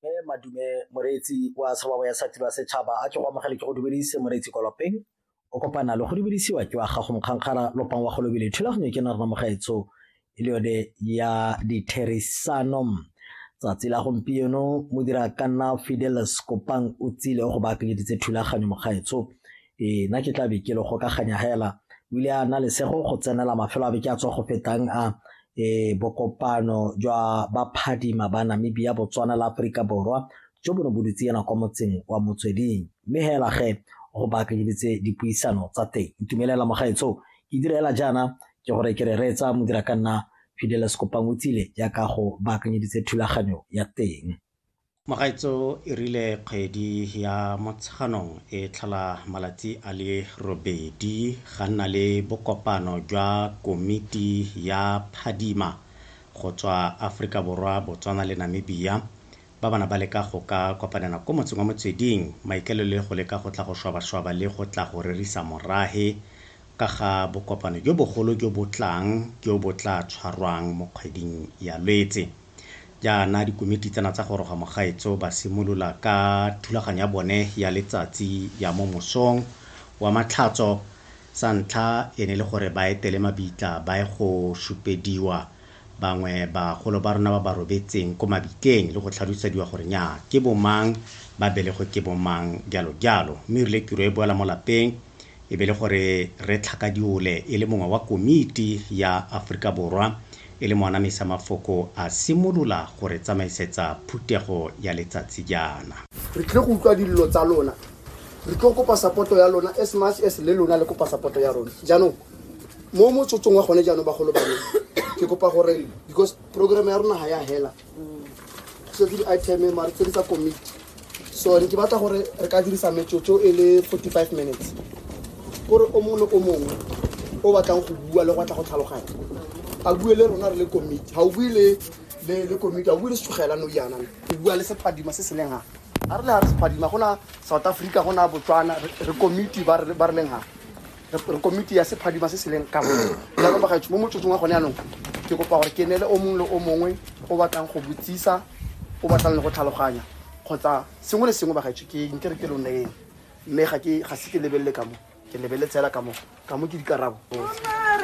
Mme Madume Moreetsi wa Tshobabo ya Sati ba Setšhaba a ke go amogele ke go dumedise Moreetsi Kolopeng o kopana le go dumedisiwa ke wa gago Mokgankgara Lopang wa Golobile thulaganyo ke na rona mogaetso e le yone ya ditherisano tsatsi la gompieno modira ka nna Fidelis Kopang o tsile go ba akenyeditse thulaganyo mogaetso Ee, nna ke tla be ke le gokaganya hela o ile a na lesego go tsenela mafelo a be ke a tswa go fetang a um bokopano jwa baphadima ba namibia botswana la aforika borwa jo bo ne bo dutse ena kwa motseng wa motsweding mme hela ge go baakanyeditse dipuisano tsa teng ntumelela mogaetsho ke direla jaana ke gore ke re reetsa modira ka nna fideles kopang o tsile jaaka go baakanyeditse thulaganyo ya teng Magaetsho e rile kgwedi ya Motsheganong e tlhola malatsi a le robedi ga nna le bokopano jwa komiti ya Phadima go tswa Aforika Borwa, Botswana le Namibia ba ba na ba leka go ka kopanela ko motseng wa Motsweding maikaelelo e go leka go tla go shwabashwaba le go tla go rerisa morage ka ga bokopano jo bogolo jo bo tlang jo bo tla tshwarwang mo kgweding ya Lwetse. Jaana dikomiti tsena tsa Goroga Mogaetsho ba simolola ka thulaganyo ya bone ya letsatsi ya mo mosong wa Matlhatso. Sa ntlha e ne le gore ba etele mabitla ba ye go supediwa bangwe bagolo ba rona ba ba robetseng ko mabitleng le go tlhalosediwa gore nyaa ke bomang, ba belegwe ke bomang, jalo jalo. Mme erile tiro e boela mo lapeng. e be le gore re tlhakadiole e le mongwe wa komiti ya Aforika Borwa e le moana mesa mafoko a simolola go re tsamaisetsa phutego ya letsatsi jaana. Re tlile go utlwa dillo tsa lona. Re tlo kopa support ya lona as much as le lona le kopa support ya rona. Jaanong mo motsotsong wa gone jaanong bagolo ba me ke kopa gore because program ya rona ha ya hela. tse ke di-iteme mare tse di tsa komiti so ne ke batla gore re ka dirisa metsotso e le 45 minutes kore o mongwe le o mongwe o batlang go bua le go batla go tlhaloganya a bue le rona re le komiti ga o bue le le le komiti a bue le setsogela no yana o bua le sephadima se se leng ga a re le ga re sephadima gona south africa gona botswana re- re komiti ba re ba re leng ga re komiti ya sephadima se se leng kabo jaanong bagaetsho mo motsotsong wa gone anong ke kopa gore ke neele o mongwe le o mongwe o batlang go botsisa o batlang le go tlhaloganya kgotsa sengwe le sengwe bagaetsho ke nke re ke lo neyeng mme ga ke ga se ke lebelele ka mo ke lebeletse fela ka mo ka mo ke dikarabo